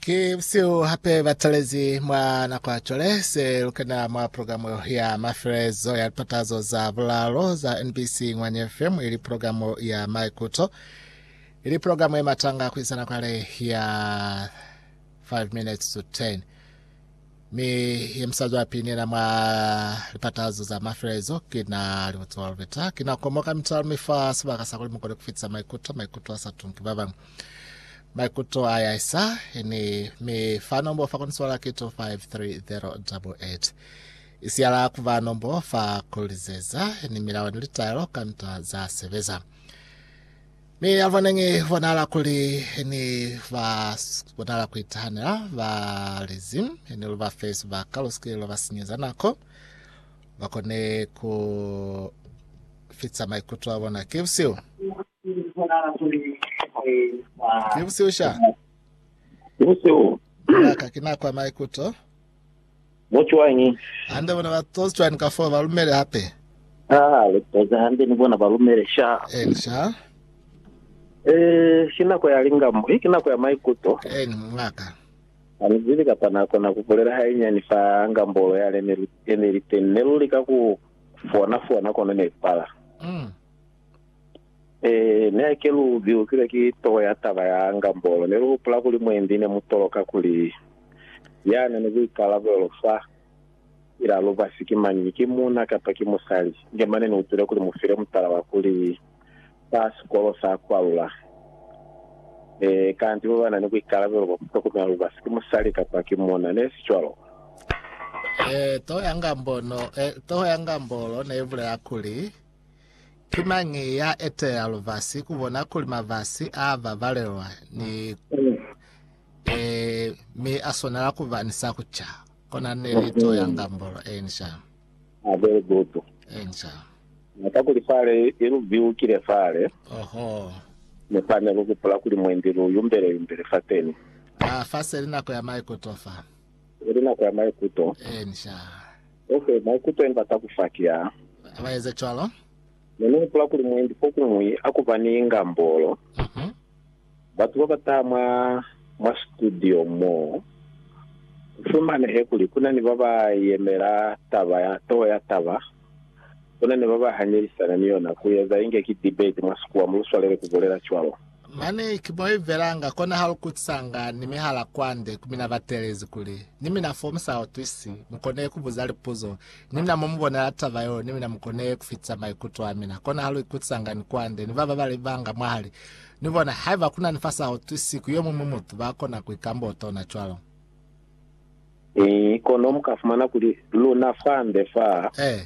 Ki seo hape ba talezi mwa nako ya cwale se lu kena mwa programu ya mafelezo ya lipatazo za bulalo za NBC Ngwanya FM ili programu ya Maikuto ili programu ye matanga ku isa nako ya le ya 5 minutes to 10 Mi ye musali wa pili nena mwa lipatazo za mafelelezo kina Libutsiwa Lubeta. Kina ukomo ka mitalo mi fa sibaka sa kuli mukone kufitisa maikuto, maikuto asa tunki babañwi. Maikuto a yaisa, ini, mi fa nombo fa koni swala ki 253088. Isiyala kuba nombo fa kulizeza, ini milao ni litaelo ka nta za sebeza. Mi abanengi bonala kuli ni ba bonala kuitahanela ba lizi, ni lu ba fe sibaka lu sike lwa ba sinyeza nako, ba kone ku fitsa maikuto a bona. Ki busihu, ki busihu sha, Ki busihu. Ki nako ya maikuto. Mo cwañi? Hande bona ba tozi cwani kafoo ba lumele hape? Haa, le tozi hande ni bona ba lumele sha. Eni, sha. Ee, ki nako ya lingamo, he, ki nako ya maikuto. Eni, mungaka. Ani zibi kapa na kona ku bulela hainyani fa ngambolo yale ne li, ne li teni. Ne lu lika ku fona, fona, kono ne li pala. Mm. Ee, ne ke lu zihusile ki toho ya taba ya Ngambolo. Ne lu hupula kuli mwendi ne mu toloka kuli ya na ni buikalabelo fa ila lubasi ki mañi, ki muuna kapa ki musali. Inge mane ni utwile kuli mu file mutala wa kuli fa sikolo sa kwalula. Ee, kanti ba ba na ni buikalabelo bwa ku tokomela lubasi ki musali kapa ki muuna, ne si cwalo? Ee, toho ya Ngambolo, ee, toho ya Ngambolo ne ibulela kuli, Ki mañi ya eteya lubasi ku bona kuli mabasi a babalelwa ni e, mi a swanela ku ba ni sa ku ca? Kona ne ni to ya ngambolo. Enca. Ah, very good. Enca. Na ka kuli fale i lu biukile fale, Oho. mi fa ne lu hupula kuli mwendi lu yumbele-yumbele fateni. Ah, fa se li nako ya maikuto fa. Ili nako ya maikuto. Ee, ni sha. Ok, maikuto yemi bata kufa ki a. Ba eza cwalo. Ne ni hupula kuli mwendi fokuñwi a ku ba ni ngambolo, Mhm. batu ba ba taha mwa, mwa situdio mo, ku fumanehe kuli ku na ni ba ba yemela taba ya, toho ya taba. Bona ne ba ba hanyelisana ni yona ku eza inge ki debate mwa sikuwa, mu lu swalele ku bulela cwalo. Mane ki mo i velanga, kona ha lu kutisanga ni mihala kwande ku mina batelezi kuli, Ni mina fo mu sa utwisi, mu kone ku buza lipuzo, ni mina mo mu bonela taba yeo, ni mina mu kone ku fitisa maikuto a mina. Kona ha lu ikutisanga ni kwande ni ba ba bali banga mwahali ni bona. Haiba ku na ni fa sa utwisi ku yo muñwi mutu, ba kona ku ikamba utona cwalo. Ee, kono mu ka fumana kuli luna fande fa. Ee.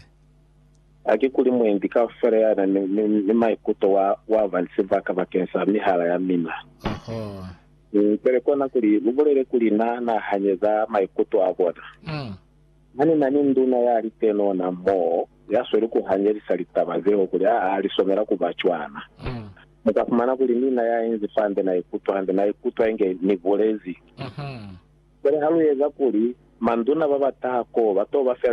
Haki kuli mwendi kaufela ya na ni, ni, ni maikuto wa, wa ba ni sibaka bakeni sa mihala ya mina. Oho. Mm, pele kona kuli lu bulele kuli na nahanye za maikuto a bona. Mm. Ha ni na ni nduna ya li tenona mo, ya sweli ku hanyelisa litaba zeo kuli a, a li somela ku ba cwana. Mm. Mu ka fumana kuli ni na ya inzi fa nde na ikutwa hande, na ikutwa inge ni bulezi. Cwale ha lu eza kuli manduna ba ba taha koo ba to ba fela